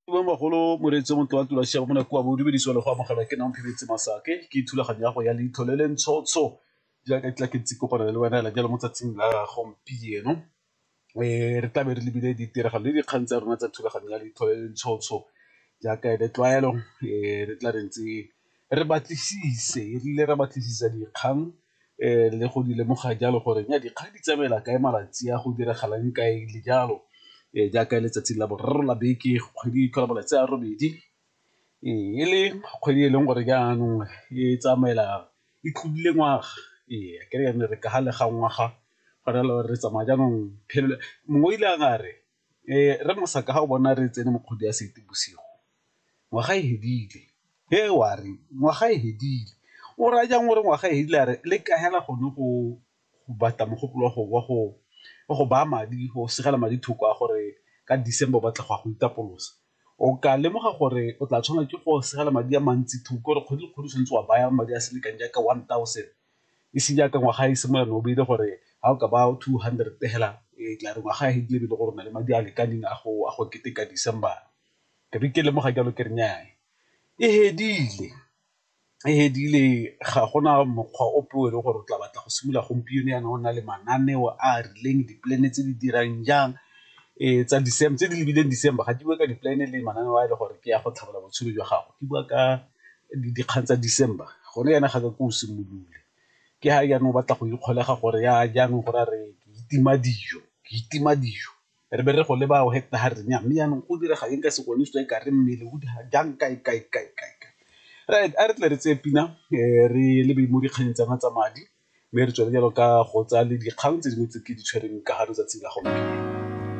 Mmamogolo moreetsi o montle wa tula siame go ne koa bo dumedisiwa le go amogelwa ke nang phebetse masake ke thulaganyo ya go ya leitlho le le ntshotsho jaaka tla ke ntse kopana le wena la jalo mo tsatsing la gompieno re tla be re lebile ditiragalo le dikgang tsa rona tsa thulaganyo ya leitlho le le ntshotsho jaaka e le tlwaelo re tla re ntse re batlisise erile re batlisisa dikgang le go di lemoga jalo gore nya dikgang di tsamaela kae malatsi a go diragalang kae le jalo jaaka letsatsi la boraro la beke kgwedi e tlhola malatsi a robedi e le kgwedi e leng gore jaanong e tsamaela e tlodile ngwaga ee ke re re ka ga le ga ngwaga go raya gore re tsamaya jaanong mongwe o ile a re Rre Mosaka ga o bona re tsene mo kgwedi ya Seetebosigo ngwaga e fedile, he wa re ngwaga e fedile o raya jang o re ngwaga e fedile a re le ka fela gone go batla mogopolo wa go baya madi go segela madi thoko a gore ka December o batla go ya go itapolosa, o ka lemoga gore o tla tshwanela ke go segela madi a mantsi thoko gore kgwedi le kgwedi o tshwanetse wa baya madi a selekano jaaka one thousand. e seng jaaka ngwaga e simolola no beile gore ga o ka ba two hundred fela e tla re ngwaga e dile bile gore na le madi a lekaneng a go a go keteka December ke be ke lemoga jalo ke re nyaa e fedile e fedile ga gona mokgwa ope o e le gore o tla batla go simolola gompieno yana o na le mananeo a a rileng di-plan-e tse di dirang jang tsa tse di lebileng December ga di bue ka di-plan-e le mananeo a e le gore ke ya go tlhabolola botshelo jwa gago di bua ka dikgang tsa December gone jaana ga ka ke o simolole ke ga jaana o batla go ikgolega gore ya jaanong gore a re ke itima dijo, ke itima dijo re be re go leba o heta ha re nyaa mme jaanong go direga eng ka sekwele se e ka re mmele o di jang kae kae kae kae kae. Right a re tle re tseye pina re lebe mo dikgannyeng tsa rona tsa madi mme re tswelele jalo ka go tsaya le dikgang tse dingwe tse ke di tshwereng ka ga letsatsi la gompieno.